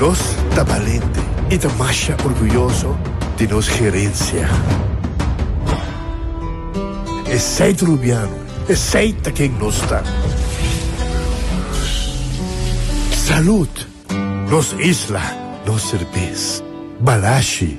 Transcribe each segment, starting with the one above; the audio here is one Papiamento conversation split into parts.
Nos ta balente i ta masha orguyoso di nos gerensia. Esei ta rubiano, esei ta ken nos ta. Salud! Nos isla, nos serbes. Balashi!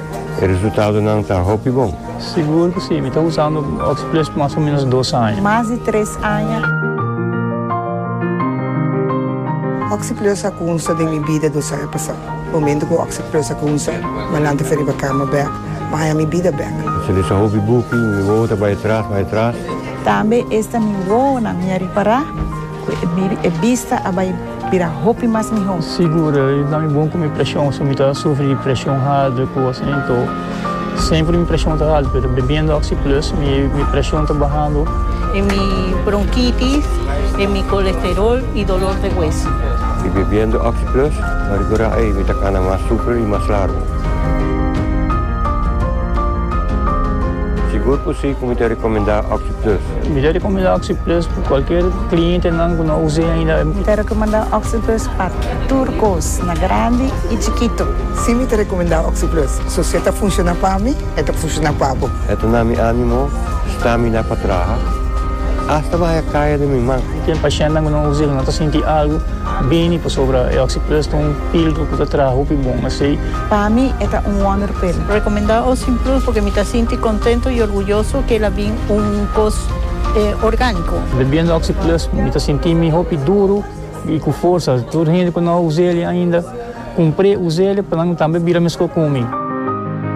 E resultadonan ta hopi bon. Sigur cu si, mi ta usando Oxplus mas o menos dos aña. Mas di tres aña. Oxplus a cunsa den mi bida dos aña pasau. Momento cu Oxplus a cunsa, Manan ta fe riba cama bek, ma aña mi bida bek. Mi ta lesa hopi buki, mi wowo ta bay atras, bay atras. Tambe esta mi wowonan mi a ripara. E bista a bai bira hopi mas mihó. Sigur, i ta mi bon ku mi preshon, si mi ta sufri di preshon haltu i kos asin, to semper mi preshon ta haltu, pero bebiendo Oxi Plus mi preshon ta bahando. E mi bronkitis, e mi kolesterol i dolor de hueso. I bebiendo Oxi Plus mi a rekurá, ei mi ta kana mas super i mas largu. Sigur ku si ku mi ta rekomendá Oxi. Plis. Mi ready cu mi da OxyPlus pa cualkier clientenan cu no a usa ainda. Mi ta recomenda OxyPlus pa tur cos, na grandi y chikito. Si mi ta recomenda OxyPlus, so si e ta funciona pa mi, e ta funciona pa bo. E ta na mi animo, stamina pa traha, hasta baja caya den mi man. Mi ten pacientnan cu no a usa y no ta sinti algo bini pasobra e OxyPlus ta un pildo cu ta traha hopi bon. Asey Pa mi e ta un wonder pa el. Recomenda Ocean Plus porque mi ta sinti contento y orguyoso que el a bin un cos organico. Bebiendo Oxy Plus mi ta sinti mi hopi duro y cu forsa. Tur hende cu no a usa el ainda, cumpre usa el pa nan tambe bira mesco cu mi.